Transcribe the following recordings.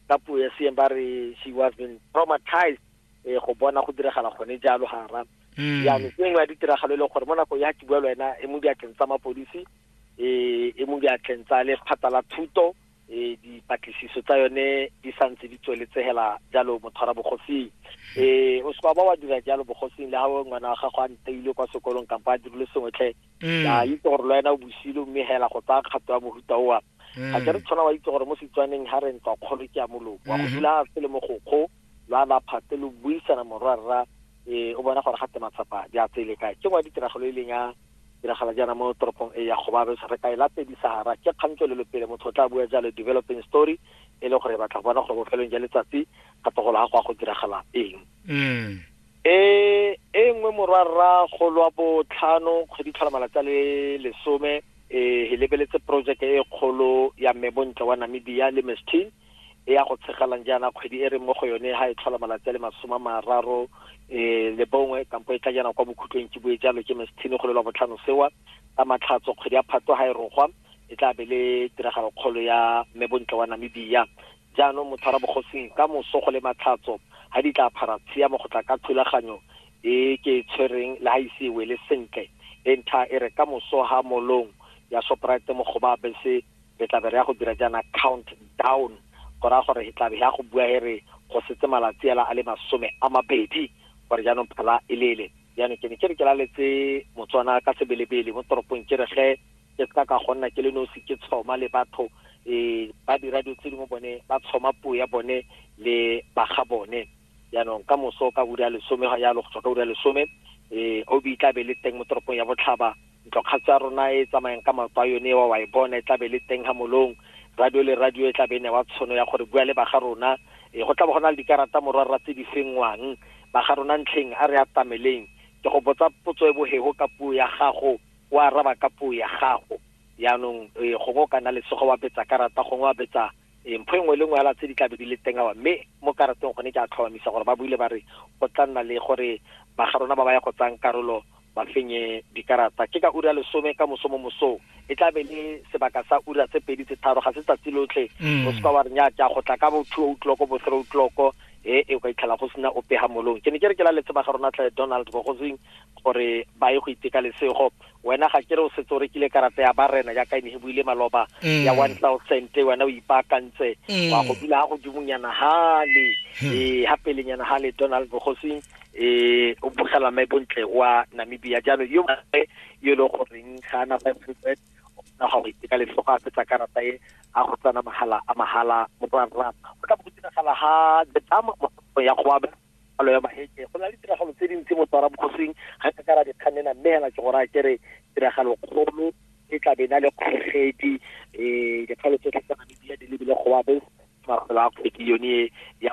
ka puo ya seeng ba re she was been traumatized eh, go bona go diragala gone jalo gara mm. yaanong ke nngwe ya ditiragalo e leng gore mo nako ya ke bua le wena e mo diatleng tsa mapodisi um e mo diatleng tsa lephata la thuto um dipatlisiso tsa yone di santse di tsweletsegela jalo motshwara bogosing um o seka ba wa dira jalo bogosing le ga ngwana wa gago a nteile kwa sekolong kampo a dirile sengwetlhe um mm. a itse gore lo ena o bosilo mme hela go tsaya kgato ya mohuta oa ga ke re mm. tshwana wa itse gore mo setswaneng ga re ntswa kgolo ke ya moloko wa go mm-hmm. dula se le mogokgo lo a laphate lo buisana morwarra um o bona gore ga te matsapa di a tsele kae ke ngwa ditiragalo e leng ya diragala jaana mo toropong e ya gobabe re ka e latedi sahara ke kgang tswelelo pele motho o tla bua jalo developing story e le gore batla go bona gore bofelong ja letsatsi kgato go laga go ya go diragala eng mm. e e nngwe morwarra kgolo wa botlhano kgwedi tlhola malatsi a le lesome e e lebeletse projeke e kgolo ya mme bontle wa namibia le mestin e ya go tshegalang jaana kgwedi e re mo go yone ga e tlhola malatsi a le masome a mararo um le bongwe kampo e tla jaana kwa bokhutlong ke bue jalo ke mestin go lelwa botlhano sewa ka matlhatso kgwedi ya phatlo ga e rogwa e tla be le tiragalo kgolo ya mme bontle wa namibia Jaanong motho a ra bogosing, ka moso go le matlhatso, ha di tlaa phara tshiamo go tla ka thulaganyo e ke e tshwereng le ha e ise e wele sentle. E ntha e re ka moso ha mall-ong ya Shoprite mo Goba bese re tlabe re ya go dira jaana count down go raya gore he tlabe he ya go bua he re go setse malatsi hela a le masome a mabedi gore jaanong phala e lele. jaanong ke ne ke re ke laletse motswana ka sebelebele mo toropong ke re ge ke seka ka go nna ke le nosi ke tshoma le batho um ba dira dilo tse dingwe bone ba tshoma puo ya bone le baga bone jaanong ka moso ka ura ya lesome ga yalo go tswa ka ura ya lesome um obi tla be le teng mo toropong ya botlhaba ntlokgatso ya rona e tsamayang ka maoto a yone wa wa e bona e tlabe le teng ga molong radio le radio e tlabe e newa tshono ya gore bua le baga rona e go tlabe go na le dikarata morwarra tse di fengwang baga rona ntlheng a re atameleng ke go botsa potso e bohego ka puo ya gago o araba ka puo ya gago yaanong e, gongwe o ka nna lesogo wa betsa karata gongwe wa betsa e, mpho e nngwe le nngwe fela tse di tlabe di le teng awa mme mo karateng gone ke a tlhomamisa gore ba buile ba re go tla nna le gore baga rona ba ba ya go tsayang karolo ba fenye dikarata ke ka ura lesome ka moso mo mosong e tla be le sebaka sa ura tse pedi tse tharo ga se tsatsi lotlhe mm. o seka wa re nya go tla ka bo two o'clock bo three o'clock e e ka itlhela go sena ope ga molong ke ne ke re ke la letse ba ga rona tle donald bogozing gore ba ye go iteka lesego wena ga ke re o setse o rekile karata ya barena yaka ene e buile maloba mm. ya one thousand wena o ipaakantse mm. wa go dula ga godimonyana gale ee ga pelenyana gale donald bogosing e o bogela mae bontle wa namibia jaanong yo mongwe yo e leng goreng ga ana five hundred na ga go iteka letlhogo a fetsa karata e a go tsana mahala a mahala mo go rra go tla bo go diragala ga the dam mo ya go aba palo ya maheke go na le tiragalo tse dintsi mo tsara bogosing ga ka kara dikgannena mme hela ke gore a kere tiragalo kgolo e tla be na le kgogedi um dikgalo tsotlhe tsa namibia di lebile go abe mafelo a kgwedi yone ya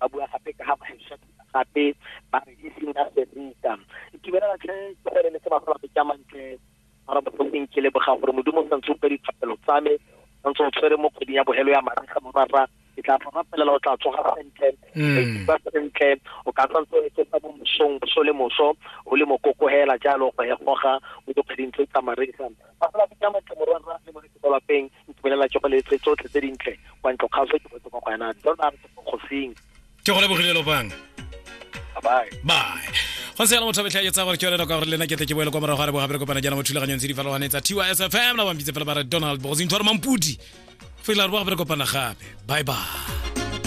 ba bua gape ka ga kgwesa gape ba re e seng ka serita itumela tlhe ke gore le se ba gola ka mantle ba re bofeng ke leboga gore modimo o santse o ka dithapelo tsa me o ntse o tshwere mo kgweding ya bogelo ya mariga morara ke tla fa rapelela o tla tsoga sentle mm. ba sentle o ka tswa ntse o etse fa mosong boso le moso o le mokoko hela jalo go hegoga o dikgweding tse tsa mariga ba fela bitsa matle morwa rra le moretse kwa lapeng ntumelela tsogo le tse tsotlhe tse dintle kwa ntlo kgaso ke botse kwa go wena donald kgosing ke go lebogile lopang bye bye go se yana motho betlha etsa gore ke yone nako gore lena ke tle ke boele kwa morago ga re bogabere kopana jaana mo thulaganyong tse di farologaneng tsa tsfm la bampitse fela ba re donald bogosintho re mampudi fela re bogabere kopana gape bye bye